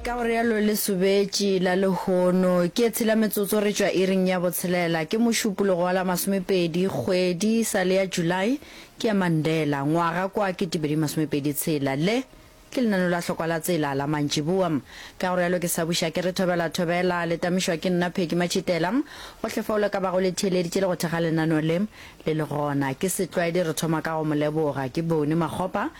ka go realo le sobetši la lehono ke e tshela metsotso re tšwa iring ya botshelela ke mošupologo wa la masomepedi kgwedi sa le ya july ke ya mandela ngwaga kwa ke tibedi masomepedi tshela le ke lenano la hlokwa la tsela la mantšiboa ka go realo ke sa buša ke re thobela thobela le tamišwa ke nna pheki matšhitela go hlefaolo ka bago le theeleditše le go thekga lenano le le le gona ke setlwaedi re thoma ka go moleboga ke bone makgopa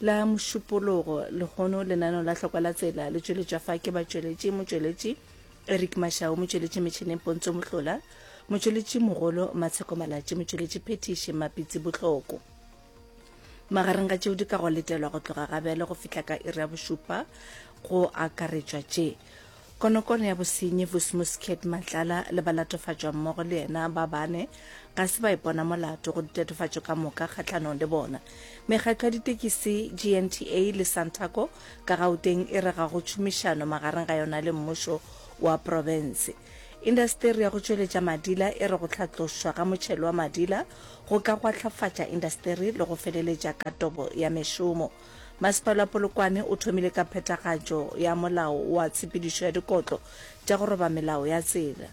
la mošupologo lehono lenano la hlokwa la tsela le tšweletša fa ke batšweletši motšweletši eric mashau motšweletši metšhineng pontso mohlola motšweletši mogolo matsheko malatši motšweletši phetiši mapitsi bohloko magareng ga tšeo di ka go letelwa go tloga gabjale go fihla ka iri ya bošupa go akaretšwa tše Konokono ya bosenyi Vusimuskhet Matlala le balatofatšwammogo le yena ba bane ga se ba ipona molato go ditatofatšo ka moka kgahlanong le bona. Mekgatlo ya ditekisi GNTA le Santaco ka Gauteng e re ga go tšhomišano magareng ga yona le mmušo wa profense. Indasteri ya go tšweletša madila e re go hlatlošwa ga motšhelo wa madila go ka gwahlafatša indasteri le go feleletša ka tobo ya mešomo. Masepala wa Polokwane o thomile ka phethagatšo ya molao wa tshepedišo ya dikotlo tša go roba melao ya tsela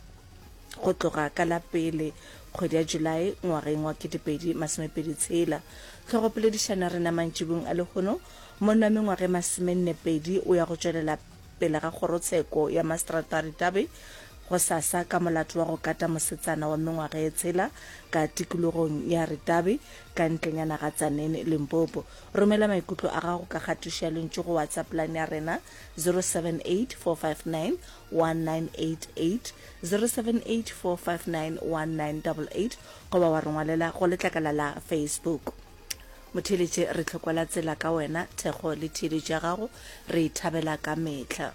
go tloga ka la pele kgwedi ya Julae ngwageng wa 2026. Tlhogopoledišano ya rena mantšibung a lehono monna wa mengwaga e masomennepedi o ya go tšwelela pele ga kgorotsheko ya maseterata Ritabe gosasa ka molato wa go kata mosetsana wa mengwaga e tshela ka tikologong ya Ritabe ka ntlenyana ga Tzaneen, Limpopo. Romela maikutlo a gago ka kgatišo ya lentšu go WhatsApp line ya rena 0784591988, 0784591988 goba wa re ngwalela go letlakala la Facebook. Motheeletše, re tlhokwela tsela ka wena, thekgo le theeletšo ya gago re e thabela ka mehla.